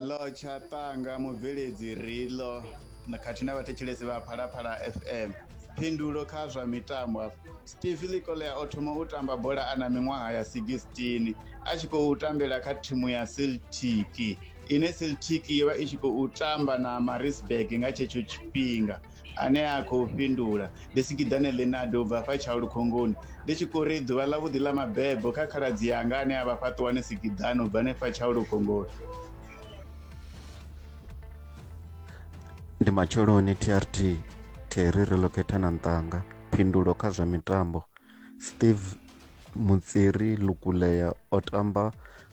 Ḽo Tshatanga, Mubveledzi Riḽo khathihi na vhathetshelesi vha Phalaphala FM. Phindulo kha zwa mitambo hafha. Steve Likolea o thoma u tamba bola a na miṅwaha ya 16 a tshi khou tambela kha thimu ya Celtic ine Celtic yo vha i tshi khou tamba na Maritzburg nga tshetsho tshifhinga. ane a khou fhindula ndi sikiḓane lenado u bva fha tshaulu khongoni ndi tshi khou ri ḓuvha ḽa vhuḓi ḽa mabebo kha khaladzi yanga ane a vha fhaṱuwani sikiḓane u bva ne fha tshaulu khongoni ndi matsheloni trt theri ri lokhetha na nṱanga phindulo kha zwa mitambo steve mutsiri lukulea o tamba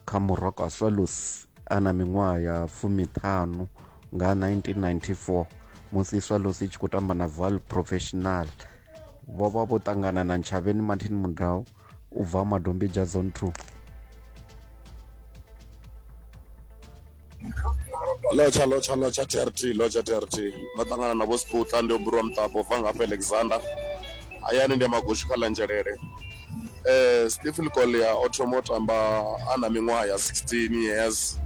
kha muroko a swalus a na miṅwaha ya fumiṱhanu nga 1994 musi swallows i tshi khou tamba na val professional vho vha vho ṱangana na ntshavheni martin mudau u bva madombija zone 2 lotsha lotsha lotsha trt lotsha trt ndo ṱangana na vho sputla ndi oburwa muṱapo bva ngafha alexander hayani ndi ya magoshi kha ḽanzhelele Stephen Collier o thoma u tamba a na miṅwaha ya 16 years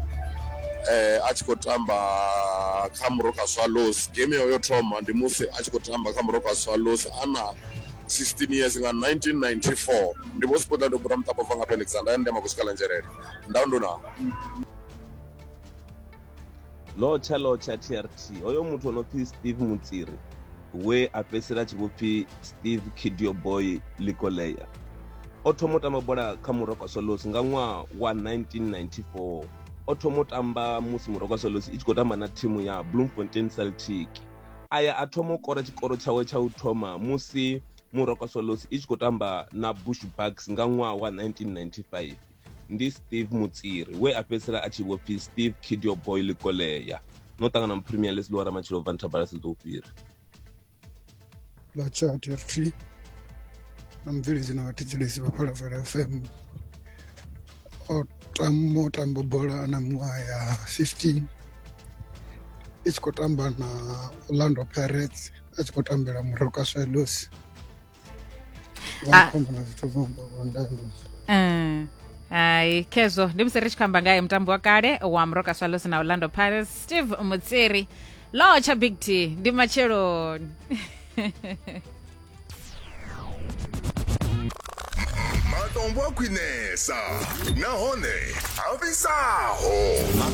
a tshi khou tamba kha Moroka Swallows game yo thoma ndi musi a tshi khou tamba kha Moroka Swallows a na 16 years nga 1994 ndi vho sikuda ndo bura muṱapo bva nga Alexander ya ndema kusikala nzhelele ndau ndo na lotsha lotsha trt hoyo muthu o no pfi steve mutsiri we a fhedzisela tshi vho pfi steve kidio boy likoleya o thoma u tamba bola kha muroko solos nga ṅwaha wa 1994 o thoma u tamba musi muroko solos i tshi khou tamba na thimu ya bloemfontein celtic aya a thoma u kora tshikoro tshawe tsha u thoma musi muroko solos i tshi khou tamba na bush bucks nga ṅwaha wa 1995 ndi steve mutsiri we a fhedzisela a tshi vho pfi steve kidio boy likolea no ṱangana mu premier league ḽiwa ramatshilo bva nthabala siḓo u fhira ḽa chat ft na mubveledzi na vhathetshelesi vha phalafala fm o tamba o tamba bola na miṅwaha ya 15 i tshi khou tamba na orlando pirates a tshi khou tambela moroka swellos Ah. Zvakhomba na zwithu zwo ngo ndando. Mm. hai khezvo ndi musi ri tshi khou amba ngaye mutambi wa kale wa mroka swallows na orlando pirates steve mutsiri law tsha big t ndi matsheloni matombo a khwinesa nahone a fhisaho